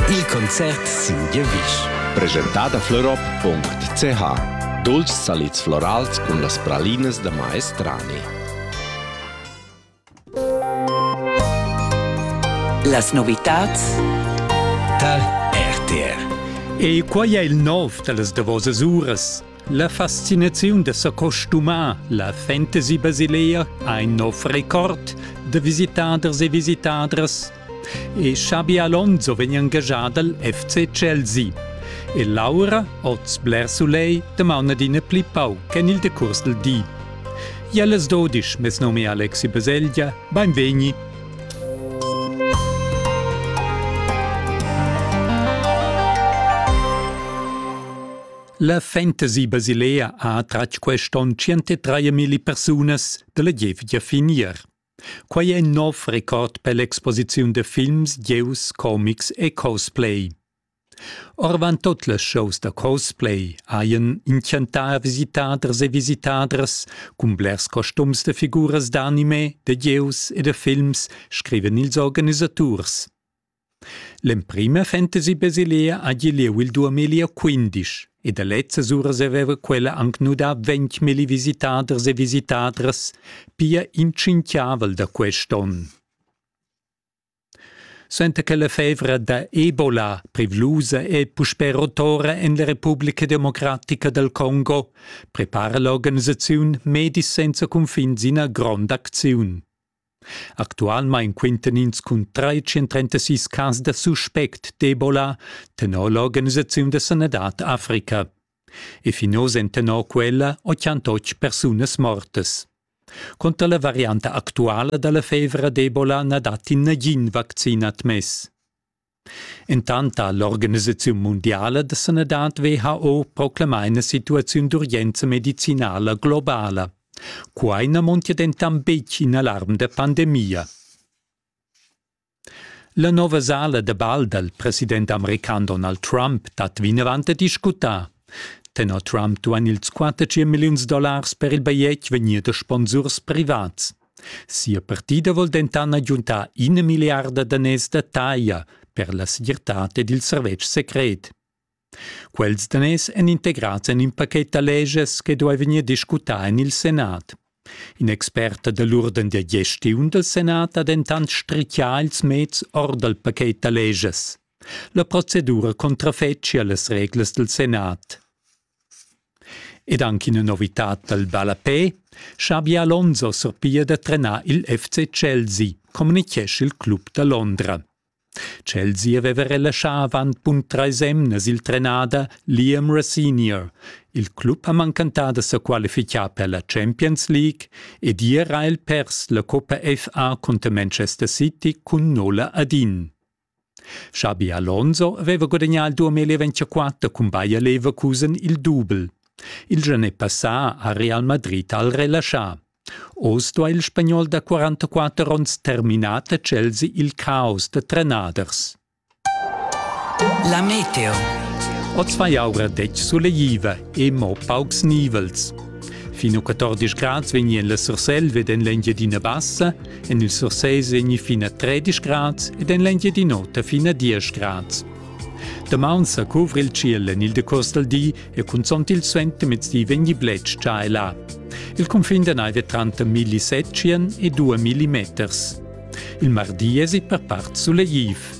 Il concert sin giavisch. Presentada florop.ch Dulcis salids florals cun las pralinas da maestrani. Las novitads tal RTR. E quai è il nov da las davosas uras. La fascinaziun da s'acostumar la fantasy basilea ha in nov record da visitaders e visitadras e Xabi Alonso vegn engagà dal FC Chelsea. E Laura, oz bler sulegl, damaun adina pli pauc en il decurs dal di. Jellas Dodisch, mes num è Alexi Baselgia, beinvegni! La Fantasy Basilea ha tratg quest'on 103.000 persunas dalla gievgia finir. Quai è in nov record per l'exposiziun da films, gieus, comics e cosplay. Orvant tot las shows da cosplay hajan inchantà visitaders e visitadras cun blers costums da figuras d'anime, da gieus e da films, scrivan ils organisaturs. L'emprima fantasy basilea ha gie lieu il 2015 e da lezzas uras haveva quella anc nudà ventmilli visitaders e visitadras, pia in tschintgavel da quest onn. Suenter che la fevra da Ebola, privlusa e puspè rotora en la Republica Democratica dal Congo, prepara l'organisaziun Medis senza cunfins ina gronda acziun. Actualmein quintan ins cun 336 cas da suspect d'Ebola tenor l'organisaziun da sanadad Africa. E fin oz èn tenor quella 88 persunas mortas. Cunter la varianta actuala dalla fevra d'Ebola na datti nagin vaccin admess. Intant ha l'organisaziun mundiala da sanadad WHO proclamà ina situaziun d'urgenza medicinala globala. Quai na montia dentant betg in alarm da pandemia. La nova sala da bal dal president american Donald Trump dat vinavant a discutar. Tenor Trump duain ils 15 milliuns dollars per il bajetg vegnir da sponsurs privats. Sia partida vol denton agiuntar ina milliarda daners da taglia per la segirtad ed il servetsch secret. Quels daners èn integrads en in pachet da leges che duai vegnir discutà en il Senat. In expert da l'urden da gestiun dal Senat ha dentant strichià ils meds or dal pachet da leges. La procedura contrafetschia las reglas dal Senat. Ed anc ina novitad dal ballapè, Xabi Alonso surpiglia da trenar il FC Chelsea, communitgescha il club da Londra. Chelsea aveva relaschà avant bun trais emnas il trenader Liam Racinier. Il club ha mancantà da sa qualificar per la Champions League ed ier ha el pers la Coppa FA cunter Manchester City cun nolla ad in. Xabi Alonso aveva gudagnà il 2024 cun Bayer Leverkusen il dubel. Il gianè passà ha Real Madrid al relaschà. Oz sto il spagnol da 44 onns terminar da Chelsea il caos da trenaders. La meteo. Oz fa jaura detg suleiva e mo paucs nivels. Fin a 14 grads vegnien la Surselva ed en l'Engiadina Bassa, En il Sursés egni fin a 13 grads ed en l'Engiadin'Ota fin a 10 grads. Damaun sa cuvra il tschiel en il decurs dal di e cunzont il suentermezdi vegni bletsch già e là. Il cunfin da naiv è tranter milli setschien e due millimeters. Il mardi esi per part sulegliv.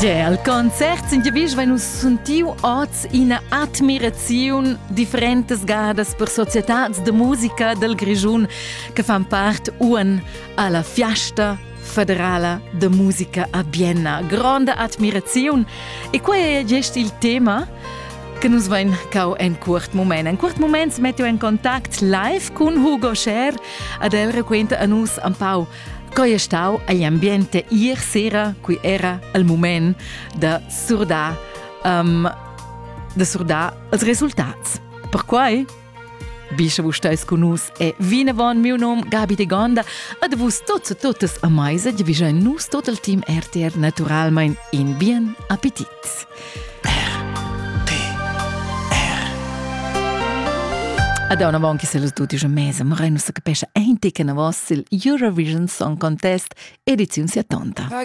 Gia al concert sin giavisch vein nus sentiu oz ina admiraziun differentas gadas per societads de musica dal Grischun che fan part un alla fiasta federala de musica a Bienna. Gronda admiraziun. E quei è gest il tema che nus vein cau en cuort mument. En cuort mument mettiu en contact live cun Hugo Scher ad el raquenta a nus un pau co è stau agl ambiente ier sera qui era al moment da surdar um, da surdar els resultats. Perquai Bi che vus stais cun nus è vinavon miu nom Gabi de Gonda ad vus tots e totes a meisa di vigein nus tot il team RTR naturalmein in bien appetit. Ad on avant che se los tutti già mese, Moreno se capesce ein ticken a vos il Eurovision Song Contest ediziun 70.